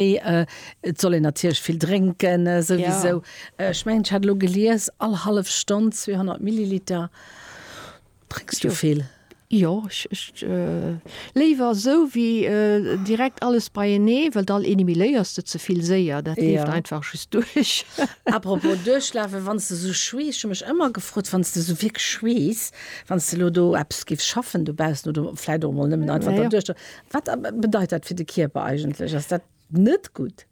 Et soll een natierlech vill drénken, souwisou. Ech mengen, ech hat elo gelies, all hallef Stonn 200 Milliliter. Drénks du vill? Jo, ech léiwer esou wéi direkt alles beienee, well dann élimineiers de ze vill séier, dat leeft einfach just duerch. Apropos duerchlafen, wann s de esou schweess, ech hu mech ëmmer gefrot, wann s de esou wierklech schweess, wann s de elo do eppes géifs schaffen dobaussen oder vläicht och emol nëmmen einfach dra duerchlafen, Wat bedeit dat fir de Kierper eigentlech? Ass dat net gutt?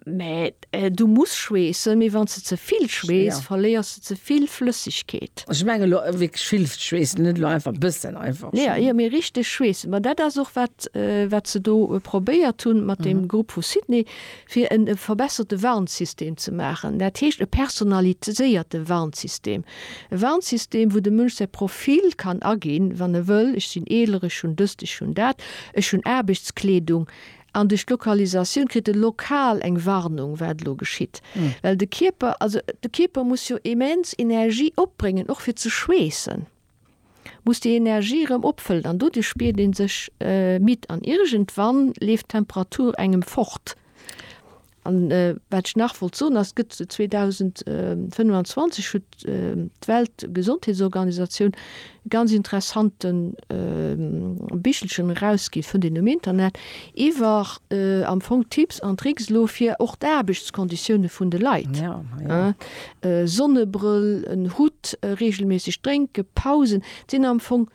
Mä du muss schweessen, mee wann s de ze vill schweess, verléiers de ze vill Flëssegkeet. Ech mengen elo wierklech vill schweessen, net elo einfach e bëssen einfach. Jo, jo, mee richteg schweessen. Mä dat ass och wat se do probéiert hunn mat deem Grupp vu Sydney, fir e verbesserte Warnsystem ze maachen, dat heescht e personaliséierte Warnsystem, e Warnsystem, wou de Mënsch säi Profil kann aginn, wann e wëll, ech sinn eeler, ech hunn dëst, ech hunn dat, ech hunn Aarbechtskleedung, an duerch d'Lokalisatioun kritt e lokal eng Warnung, wat elo geschitt, well de Kierper, also de Kierper muss jo immens Energie opbréngen, och fir ze schweessen. muss déi Energie erëm opfëllen an doduerch spiert ee sech midd an iergendwann leeft d'Temperatur engem fort. An wat ech nach wollt soen ass, gëtt 2025 huet d'Weltgesondheetsorganisatioun e ganz interessante Bichelchen erausgi fënnt een um Internet iwwer am Fong Tipps an Tricks elo fir och d'Aarbechtskonditioune vun de Leit. E Sonnebrëll, en Hutt, reegelméisseg drénken, Pausen, et sinn am Fong,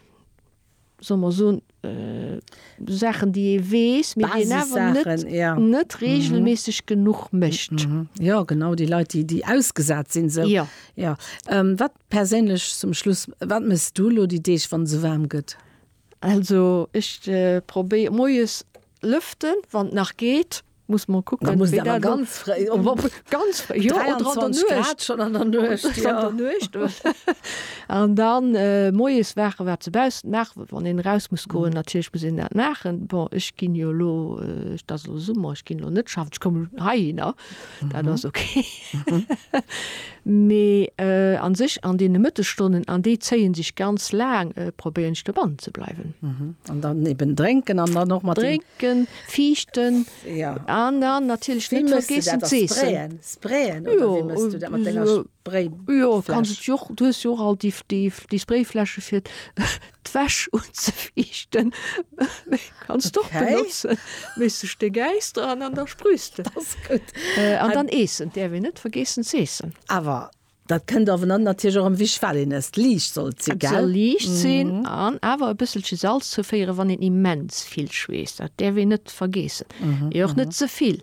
solle mer soen, Saachen, déi ee weess, mee déi een awer net, Basissaachen, ja. net reegelméisseg genuch mécht. Jo, genau, déi Leit, déi, déi ausgesat sinn esou. Jo. Jo. Wat perséinlech, zum Schluss, wat méchs du elo déi Deeg, wann et esou waarm gëtt? Also, ech probéier, moies lëften, wann et nach geet, muss mer kucken muss dat ganz frei ganz frei jo schon an der Nuecht an der Nuecht an dann äh, moes wache wat ze bausen nach wann een raus muss goen natierlech muss een dat machen bon ech ginn jo lo äh, dat lo Summer ech ginn lo net schaffen ech kommen hei hinner dat ass okay mee äh, an sech an deene Mëttestonnen an déi zéien sech ganz laang äh, probéieren ech dobannenzebleiwen an dann eben drénken an dann och mat drénken. Fiichten an dann natierlech net vergiessen z'eessen. Jo, jo kanns et jo och, du hues jo och all déi, déi, déi Sprayfläsche fir d'Wäsch unzefiichten, déi kanns de och benotzen, mees sech de Gäis dran an da sprüs de. An dann eessen, däerf een net vergiessen z'eessen. Awer Dat kënnt awer dann natierlech och erwich well een ësst, liicht soll et sinn, gell? Et soll liicht sinn an awer e bësselche Salz zouféieren, wann een immens vill schweesst, dat däerf een net vergeessen, mee och net ze vill.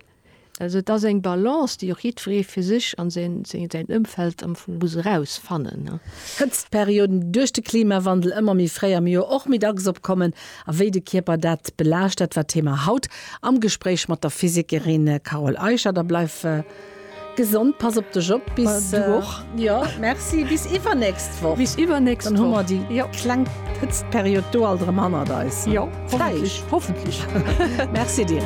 Also et ass eng Balance, déi och jiddweree fir sech an säin Ëmfeld am Fong muss eraus fannen. Hëtztperioden, déi duerch de Klimawandel ëmmer méi fréi am Joer och méi dacks opkommen a wéi de Kierper dat belaascht, dat war d'Thema haut am Gespréich mat der Physikerin Carole Eicher. Da bleift. Gesond, pass op dech op bis du och jo merci bis iwwernächst Woch bis iwwernächst dann hu mer déi jo kleng Hëtztperiod do alt erëm hannert eis jo hoffentlech hoffentlech merci dir.